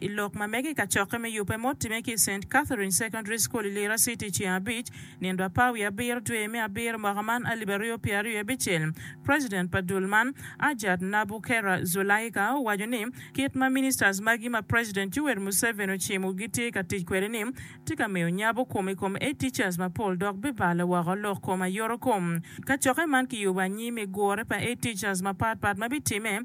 I lok ma mege i kacokke me yubbe ma otimme ki i Saint Catherine Secondary School i Lira City ceng abic, nino apar wiye abiro dwe me abiro mwaka man alip aryo pye aryo abicel, President pa dul man, Hajjat Nabukera Zulaika owaco ni kit ma ministers magi ma President Yoweri Museveni ocimo gitye ka tic kwede ni tye ka miyo nyabo kom i kom A teachers mapol dok bibalo woko lok kom ayoto kom. Kacokke man kiyubo anyim i gure pa A teachers mapat pat ma bitimme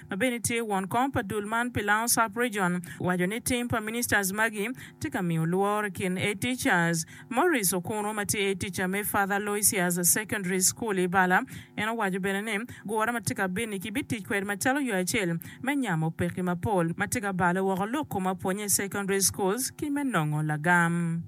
ma bene tye won kom pa dul man pi Lounge Sub-Region, owaco ni tim pa ministers magi tye ka miyo lworo i kin Aid Teachers. Maurice Okuno ma tye Aid Teacher me Father Aloysius Secondary School i Bala, en owaco bene ni gure ma tye ka bit-ni kibitic kwede macalo yo acel me nyamo pekki mapol ma tye ka balo woko lok kom apwonye i secondary schools ki me nongo lagam.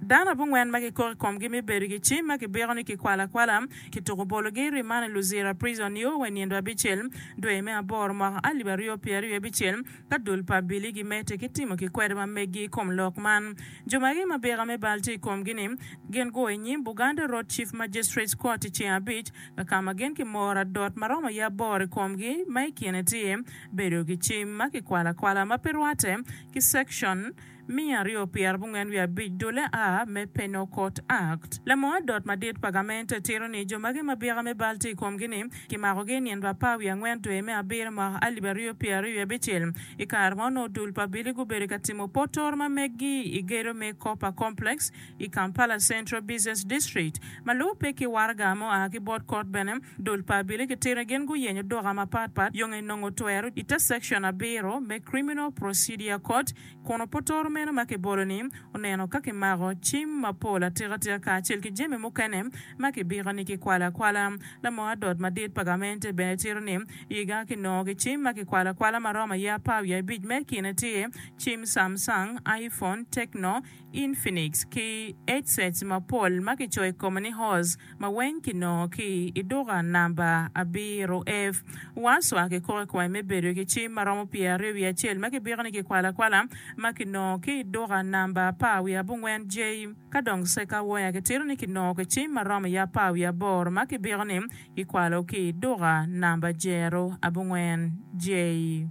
Dano abongwen ma kikoko i komgi me bedo ki cim ma kibiko ni kikwalo akwala, kituko bologi i riman i Luzira Prison nio wa i nino abicel, dwe me aboro mwaka alip aryo pyer aryo abicel, ka dul pa Billy gimedde ki timo kikwedo ma meggi i kom lok man. Jo magi ma bika me bal tye i komgi ni, gin gua i nyim Buganda Road Chief Magistrates Court i ceng abic, kakama gin kimoro adot ma romo aye aboro i komgi ma i kine tye, bedo ki cim ma kikwalo akwala ma pe rwatte ki Section, miya aryo pi arabongwen wiye abic dule a me Penokot Akt. Lamoo adot madit pa gamente tito ni jo magi ma bika me bal tye i komgi ni kimakogi i nino apar wiye angwen dwe me abiro mwaka alip aryo pyera aryo wiye abicel. I kare ma onongo dul pa Billy gubedo ka timo potoro ma meggi i gedo me Copper Complex i Kampala Central Business District ma lubo pe ki waraga ma oa ki bot kot bene dul pa Billy kitito ni gin guyenyo duka mapat pat yonge nongo twero i te Section abiro me Criminal Procedure Court kun opotoro meno ma kibolo-ni oneno ka kimako cim mapol atikatika kacel ki jami mukene ma kibiko ni kikwalo akwala. Lamo adot madit pa gamente bene tito ni iga kinongo ki cim ma kikwalo akwala ma romo aye apar wiye abic me kine tye cim Samsung, iPhone, Tecno, Infinix ki headsets mapol ma kicoyo i kome ni Hors ma weng kinongo ki i duka namba abiro. Ev. Warswa kikoko i kome me bedo ki cim ma romo pyeraryo wiye acel ma kibiko ni kikwalo akwala ma kinongo ki i duka namba apar wiye abongwen J. Ka dong Seca Wire kitito ni kinongo ki cim ma romo iye apar wiye aboro ma kibiko ni kikwalo ki i duka namba jero abongwen J.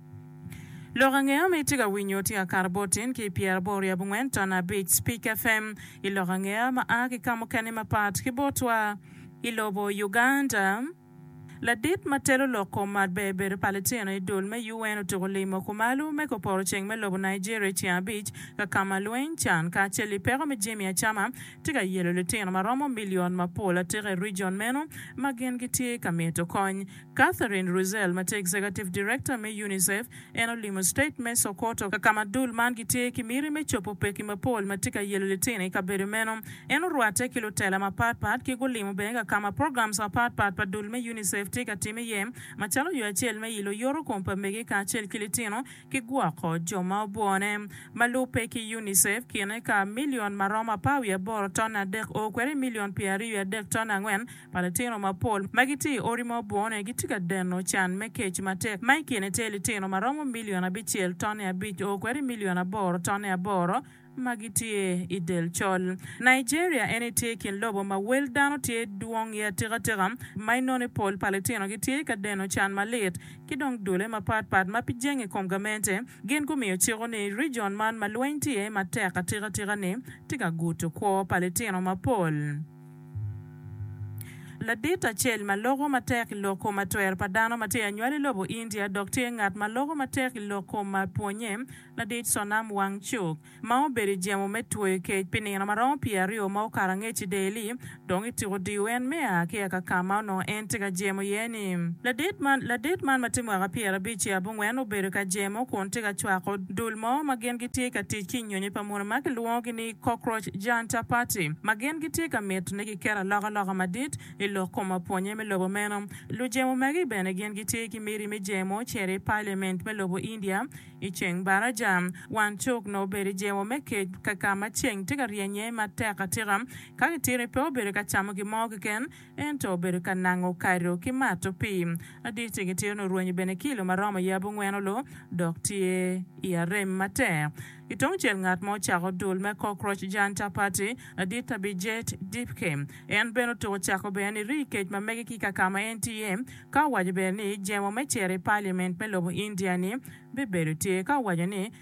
Lok ange ma itye ka winyo tye ka kato bot in ki i pyera aboro ryo abongwen ton abic Speak FM i lok ange ma a ki ka mukene mapat ki botwa i lobo Uganda. Ladit ma telo lok kom mat ber bedo pa litino i dul me UN otuko limo kumalo me koporo ceng me lobo Nigeria i ceng abic ka kama lweny, can, kacel i peko me jemi acama tye ka yelo litino ma romo million mapol atika i region meno ma gin gitye ka mito kony. Catherine Russell ma tye Executive Director me UNICEF, en olimo state me Sokoto kakama dul man gitye ki miti me cobo pekki mapol ma tye ka yelo litino i kabedo meno. En orwatte ki lutela mapat pat ki gulimo bene kakama programs mapat pat pa dul me UNICEF tye ka tim iye macalo yo acel me ilo yoto kom pa mege kacel ki litino ki gwoko jo ma obwone. Ma lubbe ki UNICEF kine ka million maromo apar wiye aboro tonne adek oo kwede i million pyer aryo wiye adek tonne angwen Pa litino mapol ma gitye i odi ma obone gitye ka deno can me kec matek, ma i kine tye litino ma romo milion abicel tone abic o kwede milion aboro tone aboro ma gitye i del col. Nigeria en aye tye i kin lobo ma wel dano tye dwong iye atikatika, ma inone pol pa litinogi tye ka deno can malit. Ki dong dule mapat pat ma pi jenge kom gamente gin gumiyo ciko ni rijion man ma lweny tye iye matek atikatika-ni tye ka guto kwo pa litino mapol. Ladit acel ma loko matek i lok kom atwer pa dano ma tye anywal i lobo India dok tye ngat ma loko matek i lok kom mar pwonnye, ladit Sonam Wangchuk, ma obedo i jemo me tweyo kec pi nino ma romo pye aryo ma okato angec i Delhi, dong i tiko diyo en me a ki aka ka ma onongo en tye ka jemo iye ni. Ladit man ma tye mwaka pyerabic ki abongwen obedo ka jemo kun tye ka cwako dul mo ma gin gitye ka tic ki i nyonyo pa muni ma kilwongogi ni, Cockroach Janta Party, ma gin gitye ka mito ni giket alokaloka madit i lok kom apwonnye me lobo meno. Lujemo magi bene gin gitye ki miti me jemo cito i Paliament me lobo India i ceng baraca. Wan cuk nongo obedo i jemo me kec ka ka ma ceng tye ka ryenye matek atika. Ka gitito pe obedo ka camo gin mo keken. Ento obedo ka nango kado ki mato pii. Adit ni gitito nongo rwenyo bene kilo ma romo yab ongweno lo dok tye i arem matek. I tungcel ngat ma ocako dul me Cockroach Janta Party, adit Abhijit Dipke. En bene otuko cako bene ni rii kec ma mege ki kakama en tye iye ka owaco bene ni jemo me cito i Parliament me lobo India ni bibedo tye ka owaco ni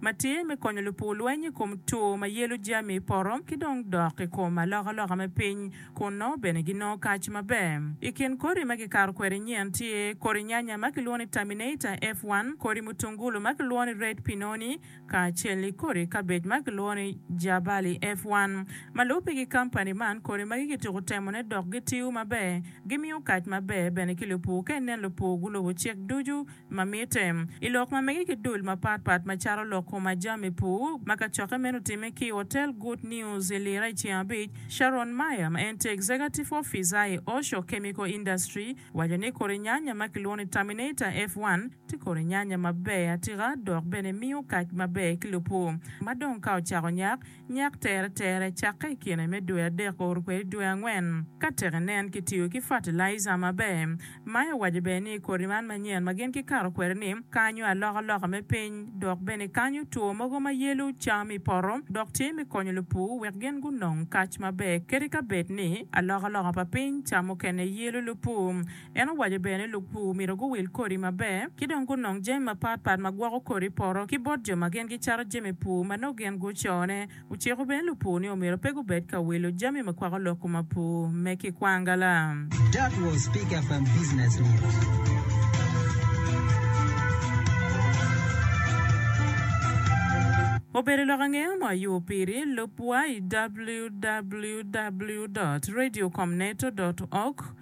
ma tye me konyo lupu lweny i kom tur ma yelo jami i poto ki dong dok i kom alokaloka me piny. Kunnu bene ginongo kac maber. I kin kodi ma kikato kwede nyen tye, kodi nyanya ma kilwongo ni Terminator F1, kodi mutungulu ma kilwongo ni Red Pinoni, kacel ki kodi kabej ma kilwongo ni Jabali F1. Ma lubbe ki kampani man, kodi magi kituko temone dok gitiyo maber. Gimiyo kac maber bene ki lupu. Ka inen lupu gulubo cik ducu, ma mitte. I lok ma mege ki dul mapat pat macalo lok kom ajami pur, ma kacokke meno otimme ki i Hotel Good News i Lira i ceng abic, Sharon Meyer ma en tye Executive Officer i Osho Chemical Industry owaco ni kodi nyanya ma kilwongo ni Terminator F1 tye kodi nyanya maber atika dok bene miyo kac maber ki lupur ma dong ka ocako nyak. Nyak teretere cakke i kine me dwe adek oro kwede i dwe angwen ka tek inen kitiyo ki fatalaija maber. Maya owaco bene ni kodi man manyen ma gin gikato kwede ni kanyo alokaloka me piny dok bene kanyo two mogo ma yelo cam i poto dok tye me konyo lupur wek gin gunong kac maber kadi ka bed ni alokaloka pa piny ca mukene yelo lupur En owaco bene ni lupur myero guwil kodi maber ki dong gunong jami mapat pat ma gwoko kodi i poto ki bot jo ma gin gicato jami pur ma nongo gin gucone. Ociko bene lupur ni omyero pe gubed ka wilo jami ma kwako lok kom apur me ki kwangala. That was pick up and business news. Obedo lok ange ma ayubo piri, lubwa i www. Radio com neto dot org.